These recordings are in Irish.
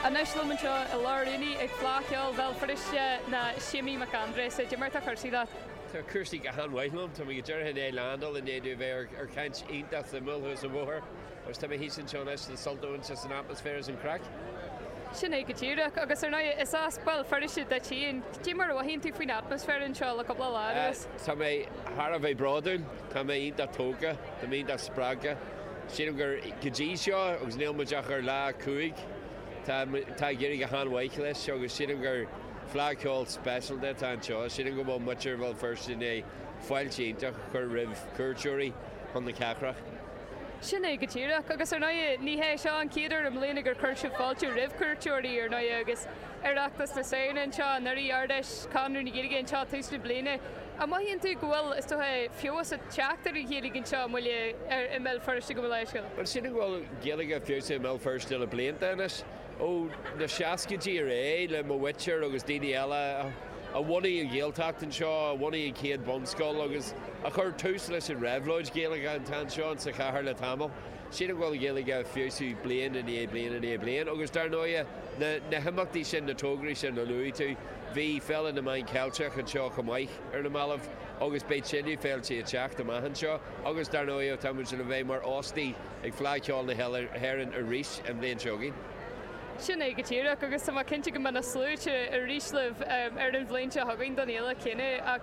Anois liom anseo i lár an aonaigh ag Fleadh Cheoil Bhéal Feirste ná Séimí Mac Aindreasa, cad é mar atá cúrsaí leat. Tá cúrsaí go han-mhaith liom. Tá mé go díreach i ndiaidh landáil i ndiaidh domh a bheith ar ar chaint iontach suimiúil thuas an bhóthair agus tá mé thíos anseo anois le sult a bhaint as an atmaisféar is an craic. Sin é go díreach agus ar ndóigh is as Béal Feirste duit féin, cad é mar a mhothaíonn tú faoin atmaisféar anseo le cúpla lá anuas? Tá mé thar a bheith bródúil, tá mé iontach tógtha, tá mé iontach spreagtha. Sílim gur go dtí seo, agus níl muid ach ar lá a cúig, tá muid, tá ag éirí go han-mhaith leis agus sílim gur Fleadh Cheoil speisialta atá anseo. Sílim go bhfuil muintir Bhéal Feirste i ndiaidh fáilte iontach a chur roimh chuairteoirí chun na cathrach. Sin é go díreach. Agus ar ndóigh, ní hé seo an chéad uair i mbliana gur chuir sibh fáilte roimh chuairteoirí, ar ndóigh, agus Oireachtas na Samhna anseo anuraidh, Ard-Fheis Chonradh na Gaeilge anseo tús na bliana. An mothaíonn tú go bhfuil, is dócha, feabhas ag teacht ar an Ghaeilge anseo i mbaile i mBéal Feirste go laethúil. Sílim go bhfuil Gaeilge ag feabhsú i mBéal Feirste le blianta anois? Ó na seascaidí ar aghaidh, le mo mhuintir agus daoine eile a bhunaigh an Ghaeltacht anseo, a bhunaigh an chéad bhunscoil agus a chuir tús leis an réabhlóid Ghaeilge atá anseo sa chathair le tamall, sílim go bhfuil Gaeilge ag feabhsú bliain i ndiaidh bliain i ndiaidh bliain. Agus dar ndóighe, na himeachtaí sin, na tograí sin a luaigh tú, bhí Féile na Meán Ceilteach anseo chomh maith. ar na mallaibh agus beidh tuilleadh féiltí ag teacht amach anseo agus dar ndóigh tá muid le bheith mar óstaigh ag Fleadh Cheoil na hÉireann arís an bhliain seo chugainn. Sin é go díreach agus tá mé cinnte go mbeidh na sluaite arís libh ar an bhliain seo chugainn don fhéile chéanna. Ach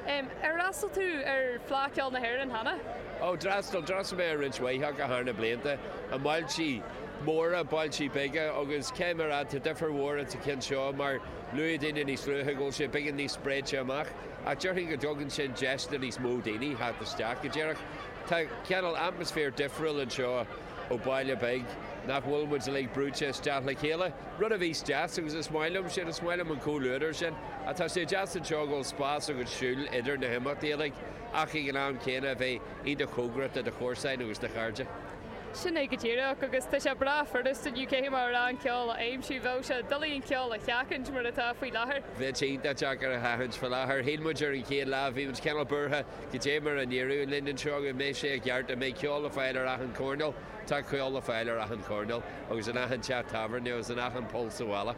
ar fhreastail tú ar Fhleadh Cheoil na hÉireann cheana? Ó, d'fhreastail, d'fhreastail mé ar roinnt mhaith acu thar na blianta, i mbailte móra, bailte beaga agus cé mar a, tá difear mhór ins an cheann seo mar Luaigh daoine níos luaithe go bhfuil sé beagán níos spréite amach, ach déarfainn go dtugann sin deis do níos mó daoine theacht isteach go díreach. Tá cineál atmaisféar difriúil anseo ó bhaile beag nach bhfuil muid uilig brúite isteach le chéile, rud a bhíos deas agus is maith liom sin, is maith liom an comhluadar sin. Ach tá sé deas anseo go bhfuil spás agat siúl idir na himeachtaí uilig ach ag an am céanna a bheith iontach cóngarach do do chomharsain agus do chairde. Sin é go díreach, agus tá sé breá furasta inniu cé mar a rá an ceol a aimsiú. Bheadh sé doiligh an ceol a sheachaint mar atá faoi láthair. Bheadh sé iontach deacair a sheachaint faoi láthair. Shíl muid ar an chéad lá, bhí muid cineál buartha, cad é mar a n-éireodh linn anseo, an mbeidh sé i gceart, an mbeidh ceol le fáil ar achan choirneál? Tá ceol le fáil ar achan choirneál, agus in achan teach tábhairne, agus in achan poll sa bhalla.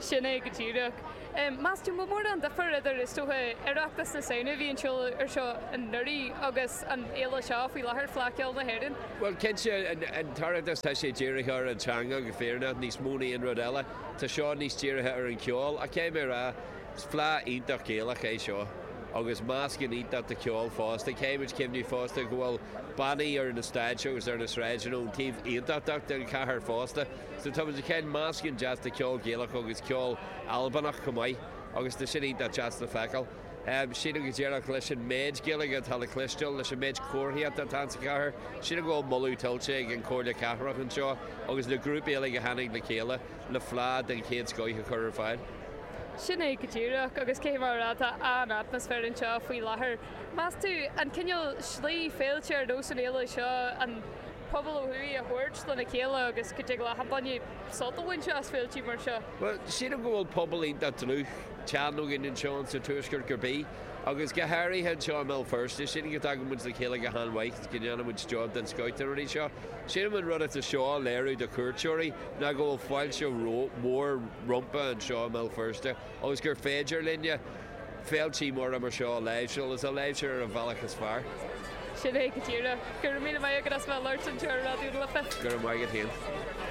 Sin é go díreach. Meas tú an bhfuil mórán de dhifear idir, is dócha, Oireachtas na Samhna a bhí ar siúl anseo anuraidh agus an fhéile seo faoi láthair Fleadh Cheoil na hÉireann. Bhuel, cinnte, an tOireachtas, tá sé dírithe ar an teanga, go fírinneach, níos mó na aon rud eile. Tá seo níos dírithe ar an cheol. Caithfidh mé a rá, is Fleadh iontach Gaelach é seo agus meascán iontach de cheol fosta. Caithfidh muid cuimhneamh fosta go bhfuil bannaí ar na stáitse agus ar na sráideanna ón taobh Aontachtach den chathair fosta. San am chéanna, meascán deas de cheol Gaelach agus ceol Albanach chomh maith, agus tá sin iontach deas le feiceáil. Sílim go díreach, leis an méid Gaeilge atá le cloisteáil, leis an méid comharthaíochta atá sa chathair, sílim go bhfuil moladh tuillte ag an Chomhairle Cathrach anseo agus na grúpaí uilig a tháinig le chéile le fleá den chéad scoith a chur ar fáil. Sin é go díreach, agus caithfidh mé a rá, tá an-atmaisféar anseo faoi láthair. Meas tú, an cineál slí, féiltí ar nós an fhéile seo, an. pobal ó thuaidh a thabhairt lena chéile agus go dtig leat an-sult a bhaint as féiltí mar seo. Bhuel, sílim go bhfuil pobal iontach dlúth teann againn anseo sa Tuaisceart ar scor ar bith, agus go háirithe anseo i mBéal Feirste. Sílim go dtagann muid le chéile go han-mhaith, go ndéanann muid job den scoith de na rudaí seo. Sílim an rud atá seo a léiriú do chuairteoirí ná go bhfuil fáilte mhór rompu anseo i mBéal Feirste agus gur féidir linne, Féiltí móra mar seo a láimhseáil, is a láimhseáil ar an bhealach is fearr. Sin é go díreach. Go raibh míle maith agat as bheith ag labhairt anseo ar Raidió na Life. Go raibh maith agat féin.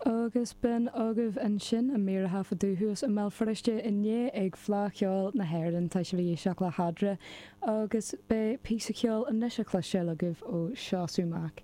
Agus b'in agaibh ansin an mír a taifeadadh thuas i mBéal Feirste inné ag Fleá Cheoil na hÉireann, tá sibhse ag éisteacht le Fadhb ar Bith, agus beidh píosa ceoil anois le cloisteáil agaibh ó Seosamh Mac.